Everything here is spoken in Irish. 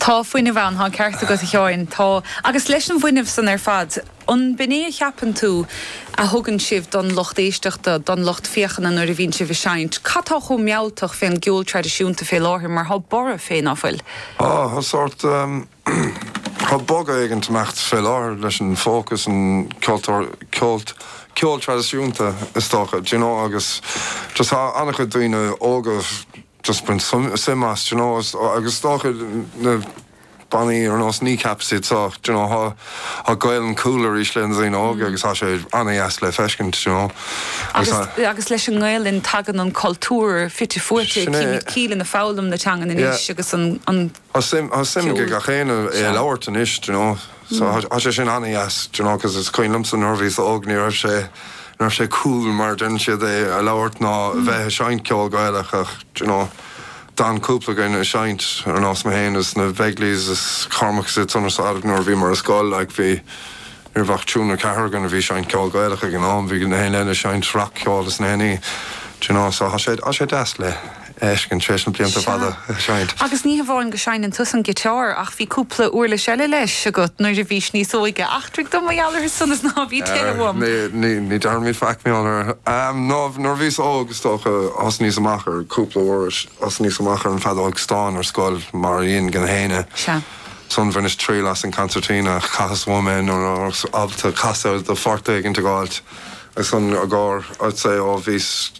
Tá fuinneamh ann, tá an ceart agat a Sheáin, tá. Agus leis an bhfuinneamh san ar fad, an b'in é a cheapann tú a thugann sibh don lucht éisteachta, don lucht féachana nuair a bhíonn sibh ag seinnt? Cad tá chomh mealltach fén gceol traidisiúnta fé láthair mar thá Borradh fé, ná fuil? Ó, athá sórt, thá bogadh éigint ag imeacht fé láthair leis an fócas an ceoltóir, ceol, ceol traidisiúnta is dócha, d'you know agus just thá an-chuid daoine óga, just ag baint suim as, d'you know, agus is dócha, na bannaí ar nós Kneecap is iad san, d'you know, thá Gaelainn cool arís le na daoine óga agus thá sé ana-dheas le feiscint, d'you know. Agus agus leis an nGaelainn tagann an cultúr fite fuaite, daoine ag foghlaim na teangan anois agus an Tá suim, tá suim aige gach aon a, é a labhairt anois do you know. So tá, tá sé sin ana-dheas do you know cause is cuimhin liomsa nuair a bhíos óg ní raibh sé, ní raibh sé cool mar a deireann siad é a labhairt ná a bheith ag seinnt ceol Gaelach ach do you know d'fhan cúpla againn ag seinnt ar nós mé féin is na Begleys is Cormac is iad san ar side nuair a bhíomar ar scoil like bhí, ní raibh ach triúr nó ceathrar againn a bhí ag seinnt ceol Gaelach ag an am, bhí gach éinne eile ag seinnt rac-cheol is gach aon ní do you know so tá sé, tá sé deas le. fheiscint tar éis na blianta fada ag seinnt. Agus ní hamháin go seinneann tusa an giotár ach bhí cúpla uirlis eile leis agat nuair a bhís níos óige. Eachtraigh dom mar gheall orthu san is ná bí cúthail. Ní déarfaimid faic mé anuraidh. Ná nuair a bhíos óg is dócha thosnaíos amach ar cúpla uirlis. Thosnaíos amach ar an feadóg stáin ar scoil mar a dhein gach éinne. Ansan bhaineas triail as an concertina. Chaitheas uaim é nuair a thabharfas alt a casadh do phort éigin ag alt agus an agóir, I'd say, ó bhíos.